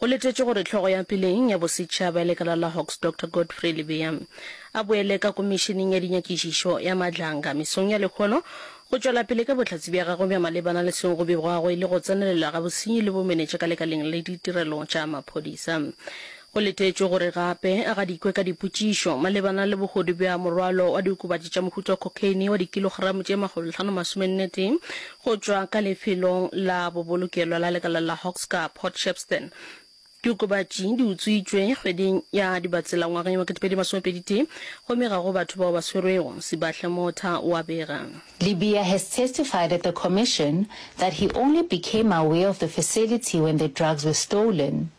Go letetšwe gore hlogo ya peleng ya bosetšhaba ya lekala la Hawks Doctor Godfrey Lebeya a boele ka komišeneng ya dinyakišišo ya Madlanga mesong ya lehono go tšwela pele ka bohlatse bja gagwe bja malebana le seo go begwago e le go tsenelela ga bosenyi le bomenetša ka lekaleng la ditirelo tša maphodisa. Go letetšwe gore gape a gadikwe ka dipotšišo malebana le bohodu bja morwalo wa diokobatši tša mohuta wa cocaine wa dikilogramo tše makgolohlanomasomenetee Go tšwa ka lefelong la bobolokelo la lekala la Hoxka, Port Shepstone, diokobatši di utswitšwe kgweding ya Dibatsela ngwageng wa 2021 gomme ga go batho bao ba swerwego, Sibahle Motha o a bega. Libya has testified at the Commission that he only became aware of the facility when the drugs were stolen.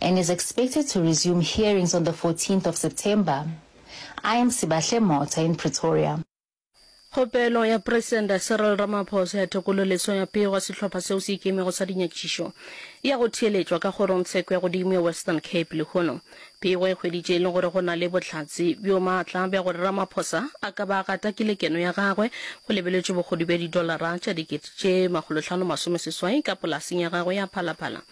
and is expected to resume hearings on the fourteenth of September. I am Sibahle Motha in Pretoria. Kgopelo ya Presente Cyril Ramaphosa ya thekgololeso ya pego ya sehlopha seo se ikemego sa dinyakišišo e ya go theeletšwa ka kgorongtsheko ya godimo ya Western Cape lehono. Pego e hweditše e le gore go na le bohlatse bjo maatla bja gore Ramaphosa a ka ba a gata kelekeno ya gagwe go lebeletšwe bogodu bja didolara tša dikete tše makgolohlano masomeseswai ka polaseng ya gagwe ya Phala Phala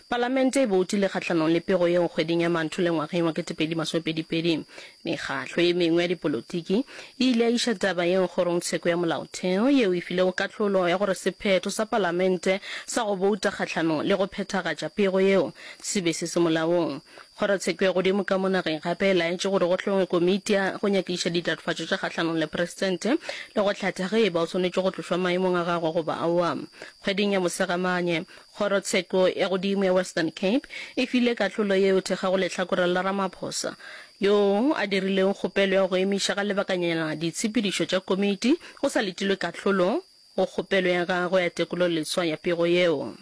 Palamente e boutile kgahlanong le pego yeo kgweding ya Mantule ngwageng wa ketepedi masomepedi pedi. Mekgahlo ye mengwe ya dipolotiki e ile ya iša taba yeo Kgorongtsheko ya Molaotheo, yeo e filego kahlolo ya gore sephetho sa Palamente sa go bouta kgahlanong le go phethagatša pego yeo se be se se molaong. Kgorotsheko ya godimo ka mo nageng gape e laetše gore go hlongwe komiti ya go nyakišiša ditlatofatšo tša kgahlanong le Presidente le go hlatha ge e ba o swanetše go tlošwa maemong a gagwe goba aowa. Kgweding ya Mosegamanye, Kgorotsheko ya godimo ya Western Cape e file kahlolo yeo thekga go lehlakoreng la Ramaphosa, yoo a dirileng kgopelo ya go emiša ka lebakanyana ditshepedišo tša komiti go sa letilwe kahlolo go kgopelo ya gagwe ya tekololeswa ya pego yeo.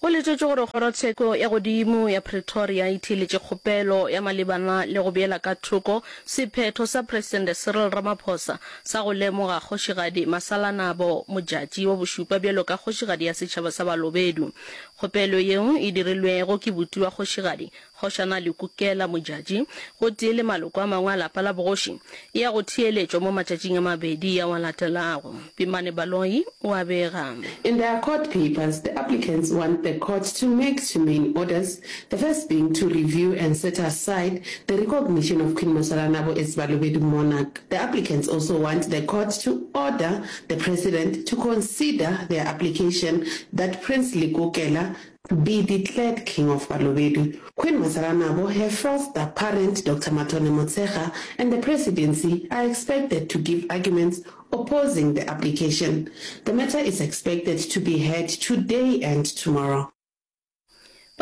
Go letetšwe gore Kgorotsheko ya godimo ya Pretoria e theeletše kgopelo ya malebana le go beela ka thoko sephetho sa Presidente Cyril Ramaphosa sa go lemoga Kgošigadi Masalanabo Modjadji wa bošupa bjalo ka Kgošigadi ya Setšhaba sa Balobedu. Kgopelo yeo e dirilwego ke buti wa kgošigadi, Kgošana Lekukela Modjadji gotee le maloko a mangwe a lapa la bogoši e ya go theeletšwa mo matšatšing a mabedi ao a latelago. Pimane Baloyi o a bega. In their court papers, the applicants want the court to make two main orders, the first being to review and set aside the recognition of Queen Mosalanabo as Balobedu monarch. The applicants also want the court to order the President to consider their application that Prince Lekukela Be declared King of Balobedu, Queen Masaranabo, her fourth da parent Doctor Mathole Motshekga and the Presidency are expected to give arguments opposing the application. The matter is expected to be heard today and tomorrow.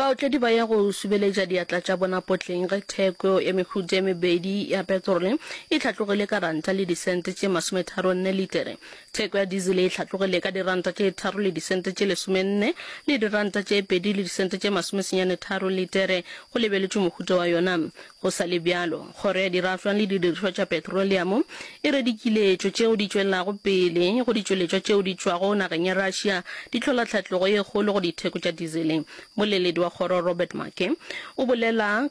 Baotledi ba ya go subeletša diatla tša bona potleng ge theko ya mehuta e mebedi ya petrole e hlatlogile ka ranta le disente tše masometharo nne litere. Theko ya dizele e hlatlogile ka diranta tše tharo le disente tše lesomenne le diranta tše pedi le disente tše masomesenyane tharo litere, go lebeletšwe mohuta wa yona. Go sa le bjalo, Kgoro ya Dirafšwa le Didirišwa tša Petroleamo e re dikiletšo tšeo di tšwelelago pele go ditšweletšwa tšeo di tšwago nageng ya Russia di hlola tlhatlogo ye kgolo go ditheko tša dizele. Mmoleledi wa kgoro Robert Maake o bolela.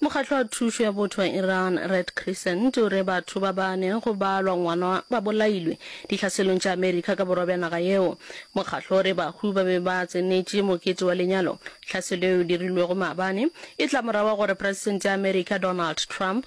Mokgatlo wa Thušo ya Botho wa Iran, Red Crescent, o re batho ba bane go balwa ngwana ba bolailwe dihlaselong tša Amerika ka borwa bja naga yeo. Mokgatlo o re bahu ba be ba tsenetše mokete wa lenyalo. Tlhaselo yeo e dirilwego maabane e tla morago ga gore Presidente ya Amerika Donald Trump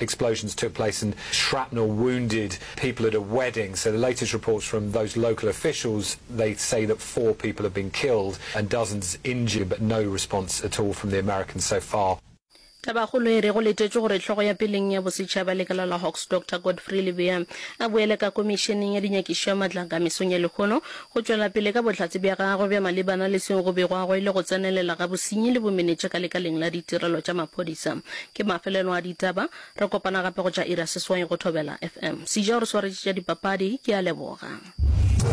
Explosions took place and shrapnel wounded people at a wedding. So the latest reports from those local officials, they say that four people have been killed and dozens injured, but no response at all from the Americans so far. Tabakgolo e re go letetšwe gore hlogo ya peleng ya bosetšhaba lekala la Hawks Doctor Godfrey Lebeya a boele ka Komišeneng ya Dinyakišo ya Matlaka mesong ya lehono Go tšwela pele ka bohlatse bja gagwe bja malebana le seo go begwago e le go tsenelela ga bosenyi le bomenetša ka lekaleng la ditirelo tša maphodisa. Ke mafelelo a ditaba. Re kopana gape go tša iri ya seswai go Thobela FM. Sija o re swaretše tša dipapadi. Ke a leboga.